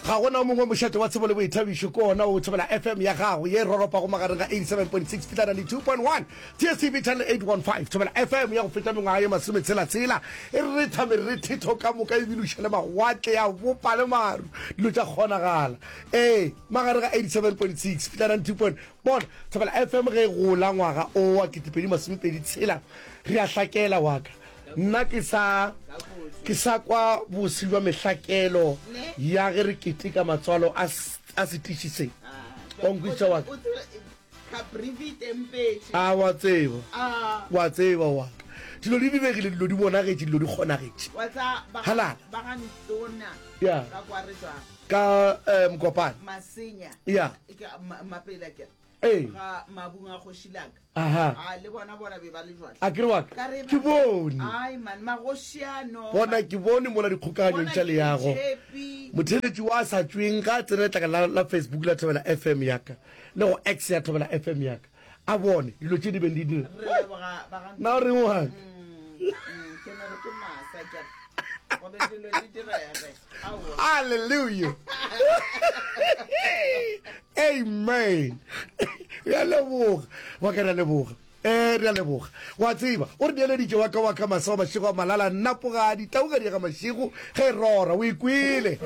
Ga go na o mongwe mošate wa tsebo le boithabišo ke ona o thobela FM ya gago ye e roropago magareng ga 87.6 fihla 92.1 DSTV channel 815. Thobela FM ya go feta mengwaga ye masometshela-tshela e retha merethetho ka moka e biloša le mawatle ya bopa le maru dilo tša kgonagala. Ee, magareng ga 87.6 fihla 92. Bona, Thobela FM ge e gola ngwaga o wa 2026 re a hlakela wa ka Nna ke sa, ke sa kwa bose bja mehlakelo ya ge re keteka matswalo a, a setiši se. O nkwešiša wa ka? A wa tseba, wa tseba wa ka, dilo di lebegile, dilo di bonagetše, dilo di kgonagetše. Halala. Ya. Ka, um, Mokopane. Ya. Ee. ga mabung a kgoši laka Aha. a le bona bona be ba le jwale a ke re wa ka Ka re ba- ke bone ai man magoši ano bona ke bone mola dikgokaganyong tša leago motheletši wa a sa tšweng ga a tsene letlaka la, la facebook la thobela fm yaka le go x ya thobela fm yaka a bone dilo tše di beng di dira re leboga ba ga na o reng waka ke no re ke masa kere gobe dilo di direge Hallelujah. Amen. Re a leboga. Wa ka re a leboga. Eh, re a leboga. Wa tseba, o re neeleditše wa ka wa ka masego mašego a malala nnapogadi tauga diega mašego ge e rora. O ikwele.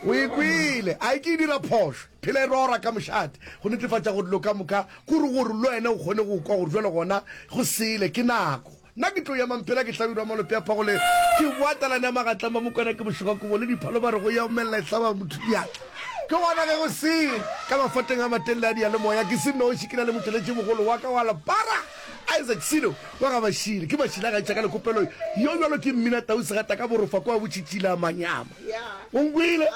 O ikwele. A ke e dira phošo. Phela e rora ka mošate go netefatša gore dilo ka moka kore gore le wena o kgone go kwa gore jwale gona go sele ke nako. Nna ke tlo ema mphela ke hlabirwa malope a phagole ke boa talane ya magatleng ba mokwana ke bošega kobo le diphalo ba re go ya omelela e hlaba motho diatla ke gona ge go se ka mafateng a mateng le a diyalemoya ke se noši ke na le motšweletši mogolo wa ka wa lepara Isaac Silo wa ga Mashile ke Mashile a gaetša ka lekopelo yo bjalo ke mmina tau segata ka borofa kwa botšhitšhile a manyama o nkwile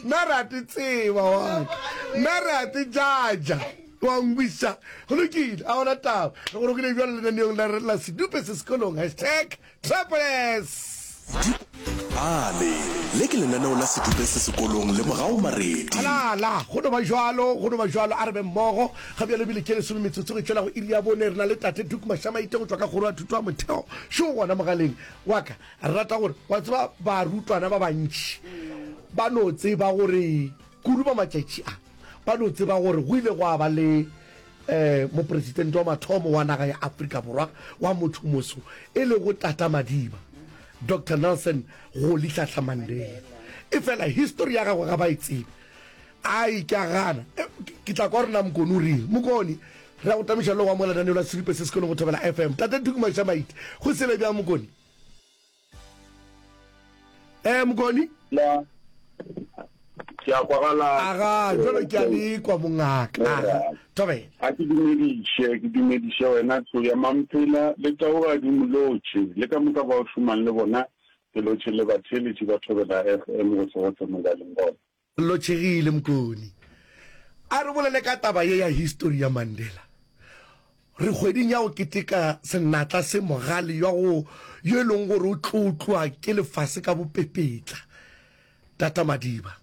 nna re a te tseba wa ka nna re a te jaja Gwangwisa, Go lokile, a gona taba. Re go rokile bjalo lenaneong la re la Sedupe se Sekolong, hashtag Tropoless. Dipale, Le ke lenaneo la Sedupe se Sekolong, lemogago Maredi. Halala, Go no ba bjalo, go no ba bjalo, a re be mmogo. Ga bjalo bile ke lesome metsotso e tšwela go iri ya bone. Re na le Tate Duke Mashamaite go tšwa ka Kgoro ya Thuto ya Motheo šo gona mogaleng wa ka. Re rata gore, wa tseba, barutwana ba bantši ba no tseba gore. Kudu ba matšatši a, ba no tseba gore go ile gwa ba le Mopresitente wa mathomo wa naga ya Afrika Borwa wa motho-moso e lego Tata Madiba, Doctor Nelson Rolihlahla Mandela. Efela histori ya gagwe ga ba e tsebe. Ai, ke a gana. Ke tla kwa gore na Mokoni o reng. Mokoni, re a go tamiša le go amoga lenaneo la Siripe se se kwelego go Thobela FM. Tate Tuku Maisha Maite, go sele bjang Mokoni? Eh, Mokoni? La, ke a kwagala. Aga, jwalo ke a le kwa mongaka. Aga, thobela. A ke dumediše, ke dumediše wena tlo ya mamphela le taogadi molotšhe le ka moka ba o šomang le bona ke lotšhe le batheeletše ba thobela FM go tsogo tse mo ba leng gona. Lochegile Mkoni a re bolele ka taba ye ya histori ya Mandela. Re kgweding ya go keteka senatla se mogale yo go yo e leng gore o tlotlwa ke lefase ka bopepetla. Tata Madiba,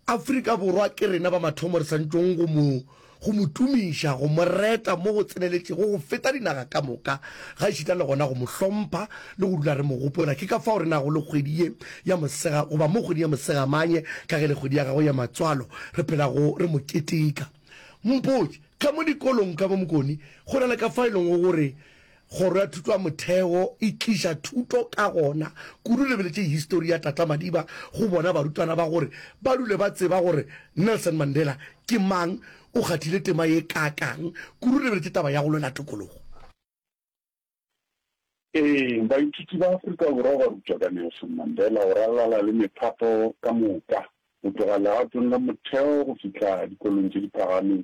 Afrika Borwa ke rena ba mathomo re santšong go mo go mo tumiša, go mo reta mo go tseneletšego go feta dinaga ka moka, gaešita le gona go mo hlompha le go dula re mo gopola. Ke ka fao re nago le kgwedi ye ya Mosega, goba mo kgweding ya Mosegamanye, ka ge e le kgwedi ya gagwe ya matswalo, re phelago re mo keteka. Mpotše, Ka mo dikolong ka mo Mkoni, go na le ka fao e lego gore Kgoro ya Thuto ya Motheo e tliša thuto ka gona kudu lebeletše histori ya Tata Madiba go bona barutwana ba gore ba dule ba tseba gore Nelson Mandela ke mang, o kgathile tema ye kaakang kudu lebeletše taba ya go lwela tokologo. Ee, baithuti ba Afrika Borwa ba rutwa ka Nelson Mandela go ralala le mephato ka moka, go tloga legatong la motheo go fihla dikolong tše di phagameng.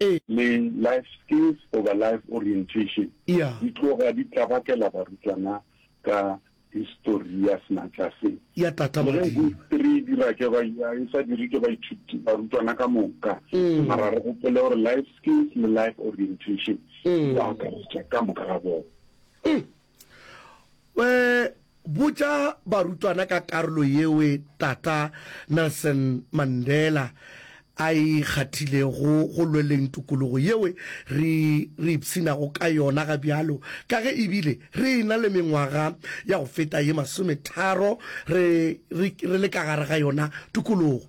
E. Le Life Skills goba Life Orientation Ya. di tloga di tlabakela barutwana ka histori ya senatla se. Ya tata Le ge Madiba. histori e dira ke ba, ya, e sa dirwe ke baithuti, barutwana ka moka, mara re gopole gore Life Skills le Life Orientation di ba akaretša ka moka ga bona. we botša barutwana ka karolo yeo Tata Nelson Mandela a e kgathilego go lweleng tokologo yeo re re ipshinago ka yona ga bjalo ka ge e bile re e na le mengwaga ya go feta ye masometharo re le ka gare ga yona tokologo.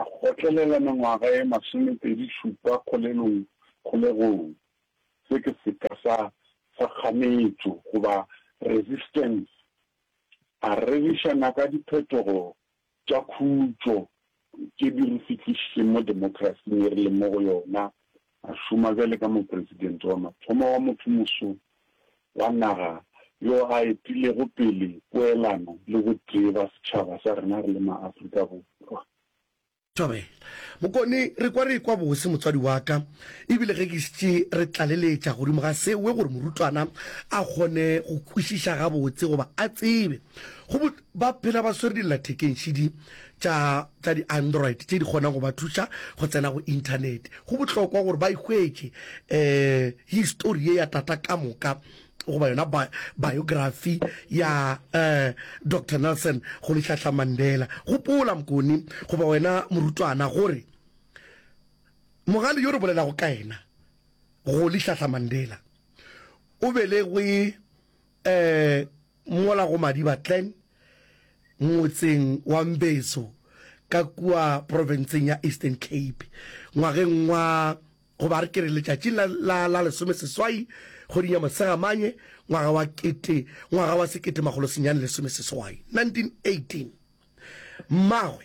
A kgotlelela mengwaga ye masomepedi šupa kgolelong, kgolegong. Se ke seka sa, sa kganetšo, goba resistance. A reriša naka diphetogo tša khutšo tše di re fihlišitšeng mo demokrasing ye re leng mo go yona A šoma bjale ka Mopresidente wa mathomo wa mothomoso wa naga yo a etilego pele poelano le botee ba setšhaba sa rena re le maAfrika Borwa. Thobela. Mokone, re kwa re ekwa bose motswadi wa ka, e bile ge ke šetše re tlaleletša godimo ga sewe gore morutwana a kgone go kwešiša gabotse goba a tsebe go Ba phela ba swere dillathekeng šidi tša, tša di-Android tše di kgonang go ba thuša go tsena go Inthanete. Go bohlokwa gore ba e hwetše um histori ye ya Tata ka moka, goba yona ba, biography ya um Doctor Nelson Rolihlahla Mandela. Gopola, Mkoni, goba wena morutwana, gore mogale yo re bolelago ka yena, Rolihlahla Mandela, o belegwe um Mola go Madiba Glen, motseng wa Mbezo ka kua profenseng ya Eastern Cape, ngwageng wa, goba a re ke re letšatšing la, la, la lesomeseswai kgweding ya Mosegamanye ngwaga wa kete, ngwaga wa sekete makgolo senyane lesomeseswai, 1918, mmagwe,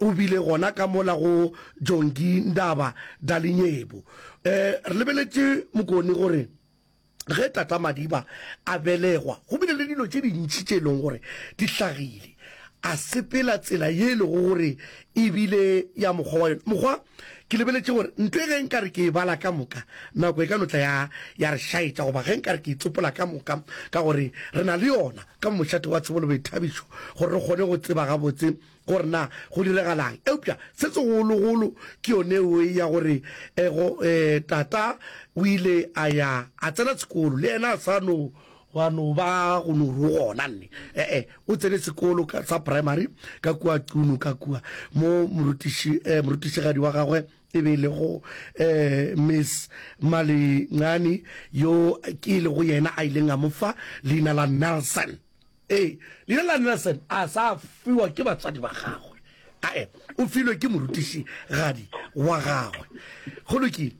O bile gona ka mola go Jongi Ndaba Dalinyebu. Re lebeletše Mokoni gore ge Tata Madiba a belegwa go bile le dilo tše dintši tše e lego gore di hlagile. A sepela tsela ye e lego gore e bile ya mokgwa wa yona. Mokgwa? Ke lebeletše gore ntwa e ge nka re ke e bala ka moka nako e ka no tla ya ya re šaetša goba ge nka re ke e tsopola ka moka ka gore re na le yona ka mošate wa Tshebo le Boithabišo gore re kgone go tseba gabotse gore na go diragalang, eupša se segologolo ke yone eo ya gore go, e, tata o ile a ya a tsena sekolo, le yena a sa no gwa no ba go no ru gona, nne, e-e, o tsene sekolo ka, sa primary ka kua Qunu, ka kua mo morutiši, e, morutišigadi wa gagwe e be e le go, e, Miss Malincani, yo ke e lego yena a ileng a mo fa leina la Nelson. Ee, leina la Nelson a sa fiwa ke batswadi ba gagwe, ae, o filwe ke morutišigadi wa gagwe. Go lokile.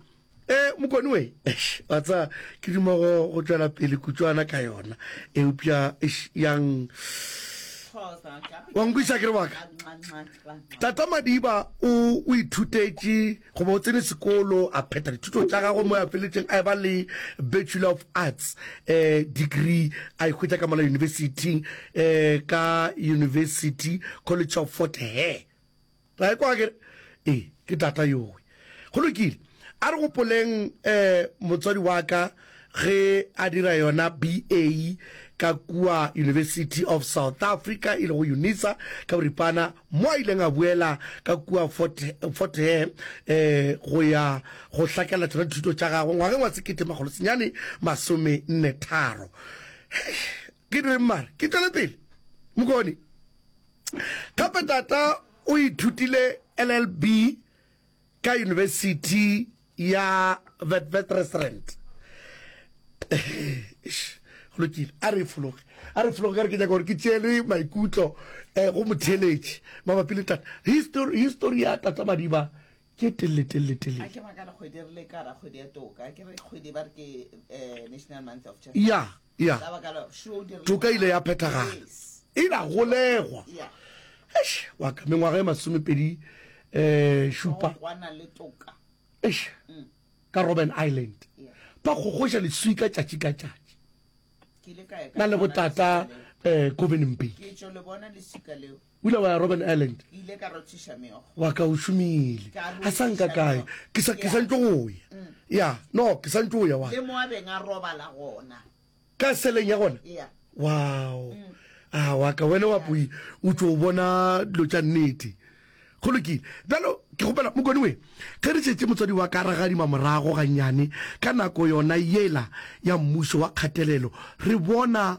E, mokone we, eish, wa tsa, ke duma go, go tšwela pele kutšwana ka yona, eupša, eish, yang, wa nkwiša ke re wa ka? Tata Madiba o, o ithutetše. Go ba o tsene sekolo, a phetha dithuto tša gagwe mo a feletšeng a eba le Bachelor of Arts eh, degree a e hwetša ka mola yunibesithing eh, ka University College of Fort Hare. Ra e kwa kere? Ee, ke tata yowe. Go lokile. A re gopoleng eh, motswadi wa ka Ge a dira yona BA ka kua University of South Africa e lego UNISA ka boripana mo a ileng a boela ka kua Fort, Fort Hare eh, go ya go hlakela tsona dithuto tša gagwe ngwageng wa sekete makgolo senyane masome nne tharo. Ke direng mare ke tšwele pele mokone. Gape tata o ithutile LLB ka University ya Witwatersrand go lokile a re fologe a re fologe ka re ke nyaka gore ke tšele maikutlo um go motheletši mabapi le tata history history ya tata madiba ke telle telle telle a ke makana kgwedi re le ka ra kgwedi ya toka ke re kgwedi ba re ke eh, national month of church ya Ya, toka ile ya phethagala, e la golegwa. Eish, wa ka, mengwaga e masomepedi um šupa. Eish, ka Robben Island, ba kgokgoša leswi ka tšatši ka tšatši. Na le botata um Covenimbake. Ula wa Robben Island. Ke ile ka rothiša meokgo. Wa ka o šomile. Ka rothiša. A sa nka kae. Ke sa ke sa ntšo go ya. Mm. Ya, no, ke sa ntšo go ya wa. Le mo a beng a robala gona. Ka seleng ya gona. Ya. Wow. Mm. A ah, wa ka wena wa poi o tšo bona dilo tša nnete. Go lokile. Bjalo ke gopela mokone we ge re tšetse motswadi wa ka ragadima morago gannyane ka nako yona yela ya mmušo wa kgatelelo re bona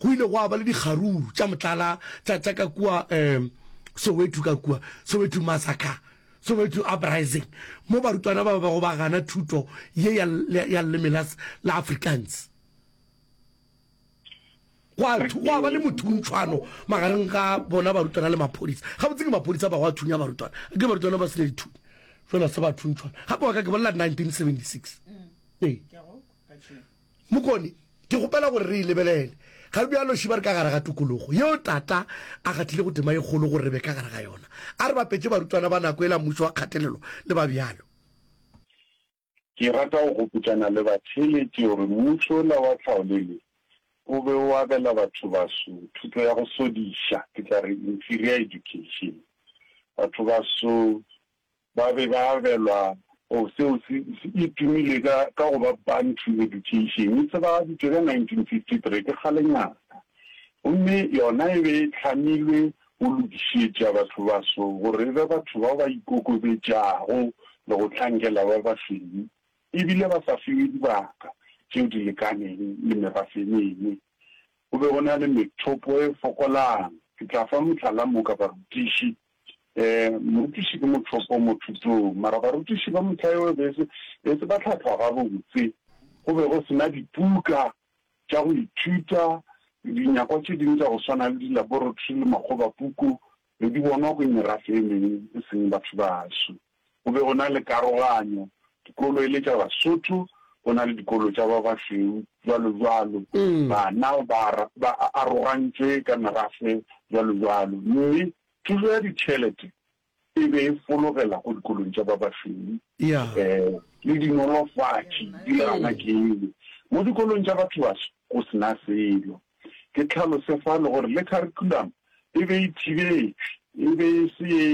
Go ile gwa ba le dikgaruru tša motlala tša tša ka kua um Soweto ka kua Soweto massacre, Soweto uprising, mo barutwana ba bego ba gana thuto ye ya ya leleme la la Afrikaans. Gwa gwa ba le mothuntshwano magareng ga bona barutwana le maphodisa. Gabotse ke maphodisa ba go a thunya barutwana, ke barutwana ba se ne dithunya fela se ba thuntshwana. Gape wa ka ke bolela 1976 ee. Mokone, ke kgopela gore re e lebelele ga bjalo. Šiba re ka gare ga tokologo yeo Tata a kgathile go tema e kgolo gore re be ka gare ga yona. A re bapetše barutwana ba nako yela mmušo wa kgatelelo le ba bjalo. Ke rata go gopotšana le batheeletši gore mmušo wola wa tlhaolele o be o abela bathobaso thuto ya go sodiša, ke tla re inferior education. Bathobaso Ba be ba abelwa go seo se e tumile ka ka go ba Bantu Education. E tsebagaditšwe ka 1953, ke kgalenyana, gomme yona e be e hlamilwe go lokišetša bathobaso gore e be batho bao ba ikokobetšago le go hlankela ba basweu e bile ba sa fiwe dibaka tšeo di lekaneng le merafe e mengwe. Go be go na le methopo e fokolang. Ke tla fa mohlala moka, barutiši, Ee, morutiši ke mothopo mo thutong, mara barutiši ba mohla yo e be e se ba hlahlwa gabotse. Go be go se na dipuka tša go ithuta, dinyakwa tše dingwe tša go swana le dilaboratory le makgobapuku be di bonwa ko merafe e mengwe e seng batho baso. go be go na le karoganyo, dikolo e le tša Basotho, go na le dikolo tša ba basweu, jwalo jwalo. Bana ba ba arogantšwe ka merafe, jwalo jwalo. Mme thušo ya ditšhelete e be e fologela go dikolong tša ba basweu. Le dinolofatši di gana kelo. Mo dikolong tša bathobaso go se na selo. Ke tlhalose fano gore le kharikhulamo e be e thibetšwe, e be e se ye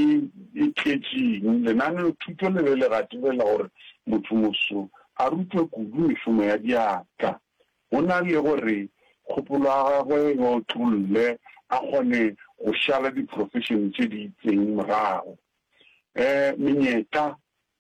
e tletšeng. Lenaneothuto le be le gatelela gore motho moso a rutwe kudu mešomo ya diatla go na le gore kgopolo ya gagwe e otlolle a kgone go šala diprofešene tše di itseng morago. Menyetla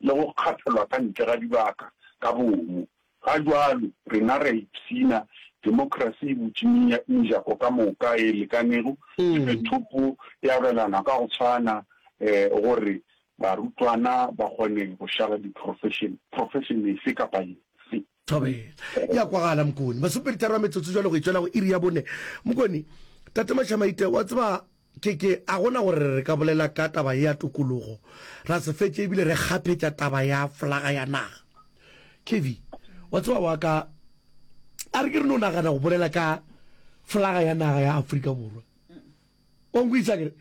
le go kgathelwa ka ntle ga dibaka ka bomo. Ga bjalo, rena re a ipshina, demokrasi e butše mejako ka moka e lekanego, e fe thopo e abelanwa ka go tshwana gore barutwana ba kgone go šala diprofešene, profešene efe kapa efe. Thobela. E a kwagala, Mokoni. Masoperitharo a metsotso jwale go e tšwela go iri ya bone. Mokoni, Tate Mašamaite, wa tseba, ke, ke, a go na gore re ka bolela ka taba ye ya tokologo, ra se fetša e bile re kgaphetša taba ya flaga ya naga. Kevin, Wa tseba, wa ka, a re ke re no nagana go bolela ka flaga ya naga ya Afrika Borwa. O nkwešiša ke re,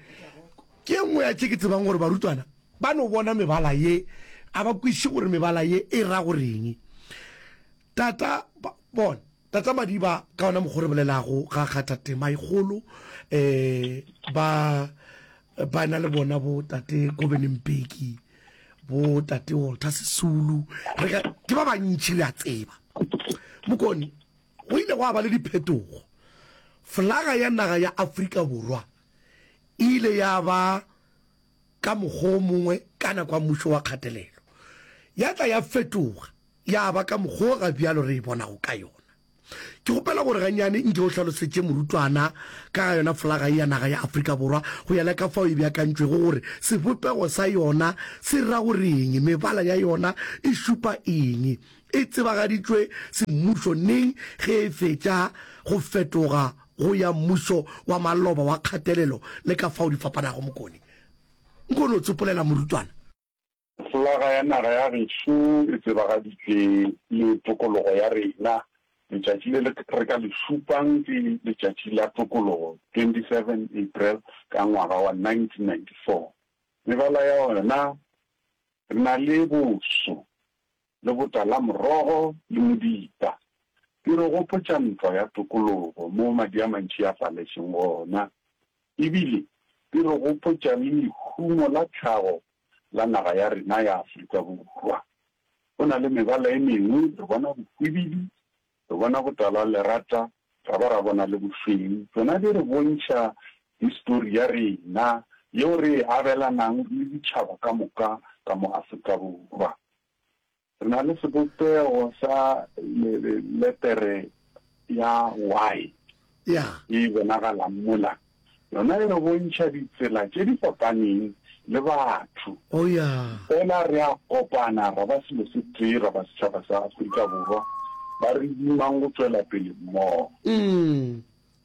Ke e nngwe ya tše ke tsebang gore barutwana ba no bona mebala ye a ba kwešiše gore mebala ye e ra go reng. Tata, ba, bona, Tata Madiba ka ona mokgwa o re bolelago ga kgatha tema e kgolo, um ba, ba na le bona bo Tate Kobeni Mbeki, bo Tate Walter Sisulu, re ka, ke ba bantši re a tseba. Mokone. Go ile gwa ba le diphetogo. Flaga ya naga ya Afrika Borwa e ile ya ba ka mokgwa o mongwe ka nako ya mmušo wa kgatelelo. Ya tla ya fetoga ya ba ka mokgwa o ga bjalo re e bonago ka yona. Ke kgopela gore ganyane nke o hlalosetše morutwana ka ga yona flaga ye ya naga ya Afrika Borwa go ya le ka fao e beakantšwego gore sebopego sa yona se ra go re'ng, mebala ya yona e šupa eng, E tsebagaditšwe semmušo neng ge e fetša go fetoga go ya mmušo wa maloba wa kgatelelo le ka fao di fapanago? Mokone, nko no tsopolela morutwana. Flaga ya naga ya geso e tsebagaditšwe le tokologo ya rena. Letšatši le re ka le šupang ke Letšatši la Tokologo, 27 April, ka ngwaga wa 1994. Mebala ya yona, re na le boso, le botalamorogo le modita. Di re gopotša ntwa ya tokologo moo madi a mantši a faletšeng gona. E bile di re gopotša le lehumo la tlhago la naga ya rena ya Afrika Borwa. Go na le mebala e mengwe re bona bohwibidu Re bona botala, lerata, ra ba ra bona le bošweu. Tšona di re bontšha histori ya rena yeo re e abelanang le ditšhaba ka moka ka mo Afrika Borwa. Re na le sebopego sa letere ya Y e bonagalang mola. Yona e re bontšha ditsela tše di fapaneng le batho. O ya. Fela re a kopana ra ba selo se tee, ra ba setšhaba sa Afrika Borwa ba re dimang go tšwela pele mmogo.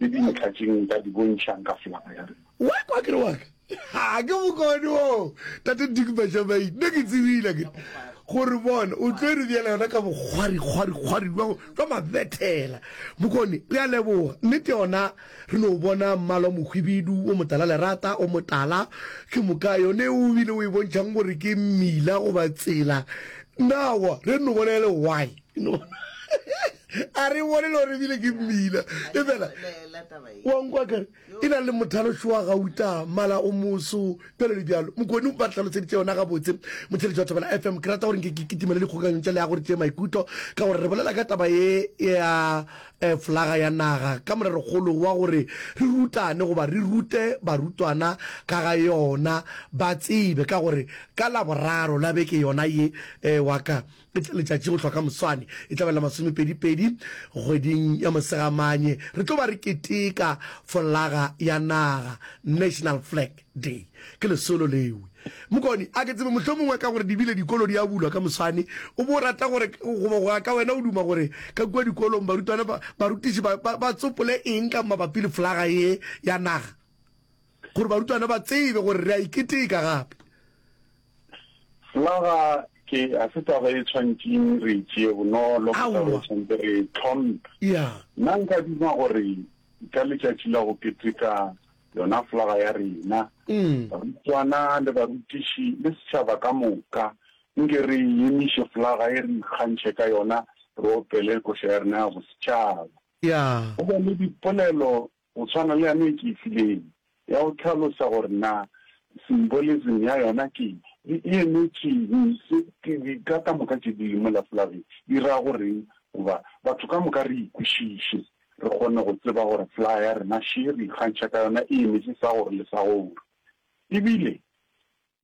Ke dintlha tše nka di bontšhang ka flaga ya rena. Wa kwa ke re wa ka? Ha ke bokone wo, Tate Dick Majamain. Nna ke tsebile ke gore bona o tlo e re bjela yona ka bokgwarikgwarikgwari jwa mabethela. Bokone, re a leboga. Nnete yona. Re no bona mmalwa mohwibidu wo motala lerata o motala. Ke moka yone o bile o e bontšhang gore ke mmila goba tsela. Na wa re no bona e le why? A re bone le gore ebile ke mmila. Efela wa nkwa kere e na le mothalošo wa gauta, mmala o moso, bjalo le bjalo. Mokoni ba re hlaloseditše yona gabotse. Motheletši wa Thobela FM, ke rata gore nke ke kitimele dikgokaganyong tša leago re tšee maikutlo, ka gore re bolela ka taba ye ya Flaga ya naga ka morerokgolo wa gore re rutane goba re rute barutwana ka ga yona ba tsebe ka gore ka Laboraro la beke yona ye wa ka e tla letšatši go hlwa ka moswane e tla ba la masomepedipedi kgweding ya Mosegamanye re tlo ba re keteka flaga ya naga, national flag. Day ke lesolo lewe. Mokoni, a ke tsebe mohlomongwe ka gore di bile dikolo di a bulwa ka moswane, o bo rata gore, goba go ya ka wena o duma gore ka kua dikolong barutwana ba, barutiši ba, ba, ba tsopole eng ka mabapi le flaga ye ya naga, gore barutwana ba tsebe gore re a e keteka gape? Flaga ke, ga se taba e tshwantšeng re e tšee bonolo, ke taba e Aowa. tshwantse re e tlhomphe. Ya. Nna nka duma gore ka letšatši la go keteka yona flaga ya rena, barutwana le barutiši le setšhaba ka moka. Nke re emiše flaga ye re ikgantšhe ka yona re opele koša ya rena ya bosetšhaba. Go be le dipolelo go tshwana le yane e ke e fileng ya go hlalosa gore na symbolism ya yona ke eng, e emetše'ng, ka moka tše di leng mola flageng di ra go re'ng goba batho ka moka re e kwešiše. Re kgone go tseba gore flaya ya rena še re ikgantšha ka yona e emetše sa gore le sa gore. E bile,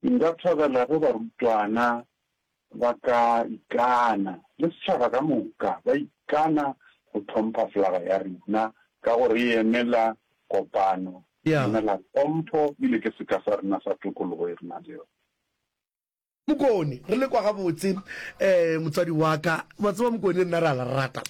nka thabela ge barutwana ba ka ikana, le setšhaba ka moka, ba ikana go hlompha flaga ya rena, ka gore e emela kopano, e emela tlhompho, e bile ke seka sa rena sa tokologo e re nang le yona. Mokone re le kwa gabotse eh motswadi wa ka wa tseba mokone nna ra la rata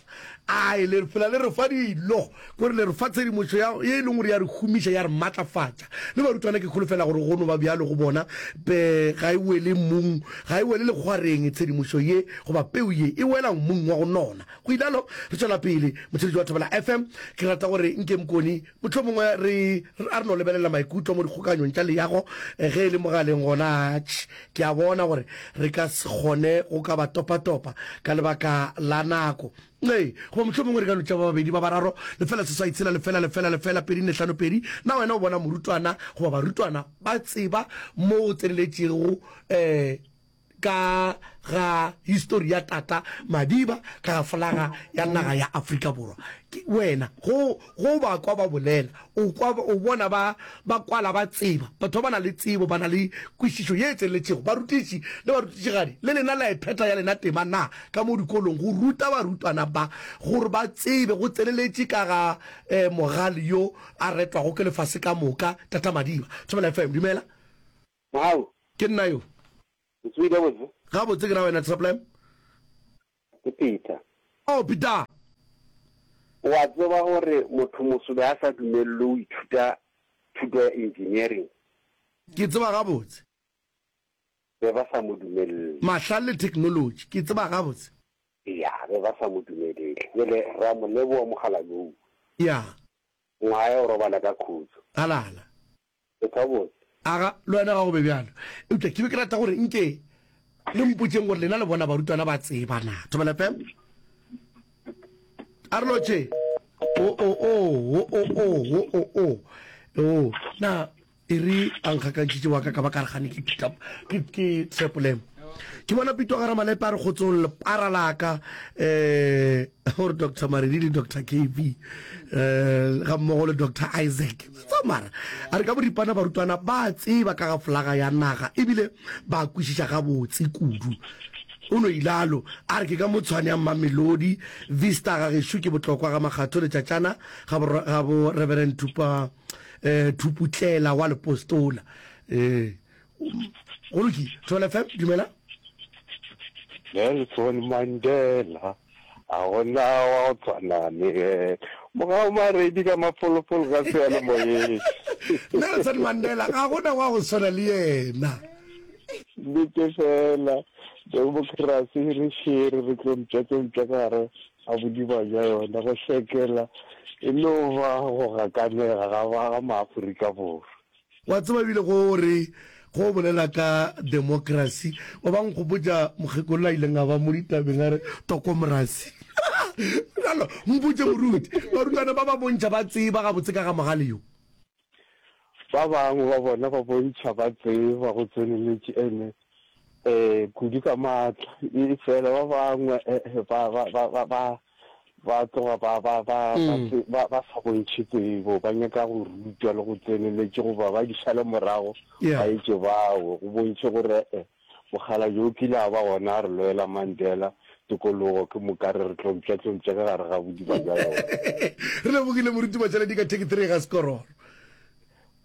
ai le fela le re fa dilo gore le re fa tshedimošo ya e leng gore ya re humiša ya re matlafatša le barutwana ke kholofela gore go no ba bjalo go bona be ga e wele mmung ga e wele lekgwareng tshedimošo ye goba peu ye e wela mmung wa go nona go ilalo re tšwela pele motšheletši wa thobela fm ke rata gore nke mokone Mohlomongwe re, a re no lebelela maikutlo mo dikgokaganyong tša leago ge e le mogaleng gona. Atšh, ke a bona gore re ka se kgone go ka ba topatopa ka lebaka la nako. Ee, goba mohlomongwe re ka no tšea ba babedi, ba bararo, lefela seswai tshela lefela lefela lefela pedi nne hlano pedi. Na wena o bona morutwana goba barutwana ba tseba mo go tseneletšego, ee, ka ga histori ya tata Madiba ka ga folaga ya naga ya Afrika Borwa. Ke wena go go ba kwa ba bolela o kwa o bona ba ba kwala ba tseba batho ba na le tsebo ba na le kwišišo ye tseletšego barutiši le barutišigadi le lena la e phetha ya lena tema na ka mo dikolong go ruta barutwana ba gore ba tsebe go tseleletše ka ga eh, mogale yo a retwago ke lefase ka moka tata Madiba Thobela FM dumela Mohau. Ke nna yo. O tsoile gabotse? Gabotse ke na wena Tsheplam? Ke Peter. Oh, Peter. O a tseba gore mothomoso be a sa dumelelwe go ithuta thuto ya engineering? Ke tseba gabotse. Be ba sa mo dumelele. Mahlale le technology, ke tseba gabotse. Eya, be ba sa mo dumelele. Bjale ra mo leboga, Mogalalou. Eya. Ngwaga ya go robala ka khutšo. Halala. le ka botse. Aga, le wena ga go be bjalo. Eupša ke be ke rata gore nke le mpotšeng gore lena le bona barutwana ba tseba na. Thobela fela. A re lotšhe. O-o-oo, wo-o-oo, wo-o-oo. Oo, na, e re a nkgakantšhitše wa ka ka ba ka re gane ke phita, ke, ke trepolemo. Ke bona Pitwa Garamalepe a re kgotsong lepara la ka, ee, gore Doctor Maredi le Doctor KB, ee, gammogo le Doctor Isaac. Tsa mara a re ka boripana barutwana ba a tseba ka ga flaga ya naga ebile ba a kwešiša gabotse kudu. O no ilalo a re ke ka mo tshwane ya Mmamelodi, Vista ga gešo ke botlokwa ga Makgatho le Tšatšana ga bo, ga bo Reverend Thupa, eh, Thuputlela wa Lepostola. Eh, go lokile thobela fm dumela Nelson Mandela a gona wa go tshwana le moga o maredi ka mafolofolo ka seyalemoyeng Nelson Mandela ga gona wa go tshwana le yena nnete fela demokrasi re šere re tlo mpša tse mpša ka gare ga bodima bja yona go sekela e no ba go gakanega ga ba ga maaforika borwa Wa tseba ebile ge o re ge o bolela ka democracy o ba nkgopotša mokgekolo a ileng a ba mo ditabeng a re tokomorasi. Bjalo mpotše moruti, barutwana ba ba bontšha ba tseba gabotse ka ga mogale yo? Ba bangwe ba bona ba bontšha ba tseba go tseneletše. Amen. Ee, kudu ka maatla. Efela ba bangwe ba, ba, ba, ba, ba, ba tloga ba, ba, ba, ba, tse- ba, ba sa bontšhe tsebo, ba nyaka go rutwa le go tseneletše goba ba di šale morago Yeah. ba etše bawo go bontšhe gore e mogala yo o kile a ba gona a re loela Mandela tokologo ke moka re re tlompša-tlompša ka gare ga bodiba bja yona. re lebogile moriti matšaledi ka theketherega sekororo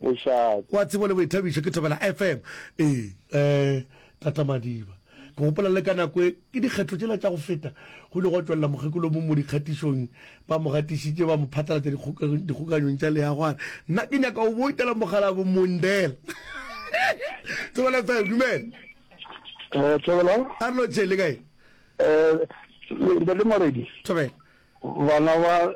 Mošate. Wa tsebo le boithabišo ke thobela FM ee. Ee tata Madiba ke gopola le ka nako e ke dikgetho tšela tša go feta go ile gwa tšwelela mokgekolo o mong mo dikgatišong ba mo gatišitše ba mo phatlalatša dikgokaganyong tša leago a re nna ke nyaka go boutela mogala bo Mondela Thobela FM dumela Eh, Thobela. a re lotšhe le kae Eh, le le moredi. Thobela. Bana ba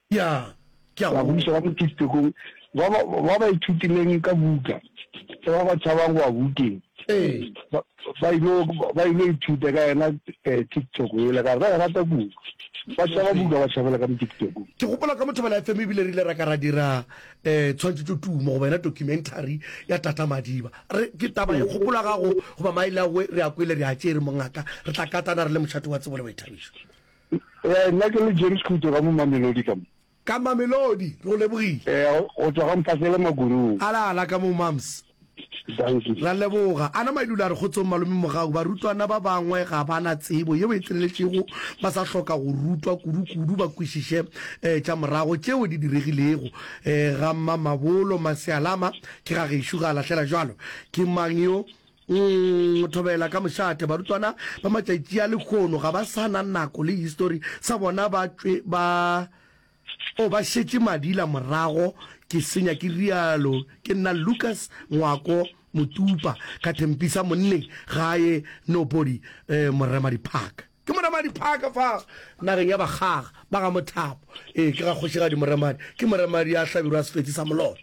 Ya, ke a go. Babuša ba mo Kistekong ba ba, ba ba ithutileng ka buka ya ba ba tšhabang go wa bukeng, Ee. ba, ba il'o, ba il'o ithuta ka yena, eh, TikTok yela. Ka re, Ba e rata buka. Ba tšhaba buka, ba tšhabela ka mo Tiktokong. Ke gopola ka Mothobela FM e bile re ile ra ka ra dira, eh, tshwantšhetšotumo goba yena documentary ya Tata Madiba. Re, ke taba ye kgopolo ya gago goba Maile a goe re a kwele, re a tšee re mongaka, re tla katana re le mošate wa tsebo le boithabišo. Ee, nna ke le James Khuto ka mo Mamelodi ka mo. Ka Mamelodi, re go lebogile. Ee, go tswa ga Mphasele Magorong. Ala ala ka mo Mams. Dankie. Ra leboga. Ana Mailula a re kgotsong Malome Mogau, barutwana ba bangwe ga ba na tsebo yeo e tseneletšego, ba sa hloka go rutwa kudu kudu ba kwešiše eh, tša morago tšeo di diregilego eh, ga Mmamabolo. Masealama ke ga gešo ga a lahlela jwalo. Ke mang yo? Nng, thobela ka mošate. Barutwana ba matšatši a lekgono ga ba sa na nako le histori sa bona ba tšwe ba o ba šetše madila morago ke senya ke rialo ke nna Lucas Ngwako Motupa ka thempisa monneng ga a ye nobody eh, Morema Diphaka. Ke Moremadi Park fa nageng ya bakgaga ba ga Mothapo. Ee, ke ga Kgošigadi Moremadi. Ke Moremadi ya hlabirwa Sefetsi sa Moloto.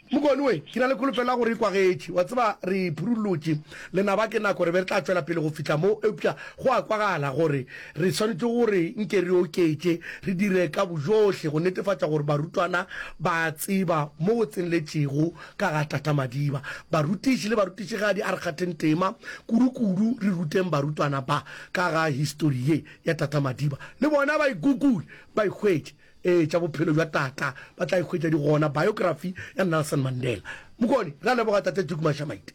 Mokone we, ke na le kholofelo ya gore e kwagetše. Wa tseba, re phurulotše lenaba ke nako re be re tla tšwela pele go fihla mo, eupša go a kwagala gore re swanetše gore nke re oketše, re dire ka bojohle go netefatša gore barutwana ba a tseba mo go tsenletšego ka ga Tata Madiba. Barutiši le barutišigadi, a re kgatheng tema, kudukudu re ruteng barutwana ba. Ka ga histori ye ya Tata Madiba, le bona ba e Google, ba e hwetše. Ee, tša bophelo bja Tata ba tla e hwetša di gona, biography ya Nelson Mandela. Mokone, re a leboga Tate Duke Mashamaite.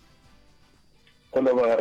Go leboga.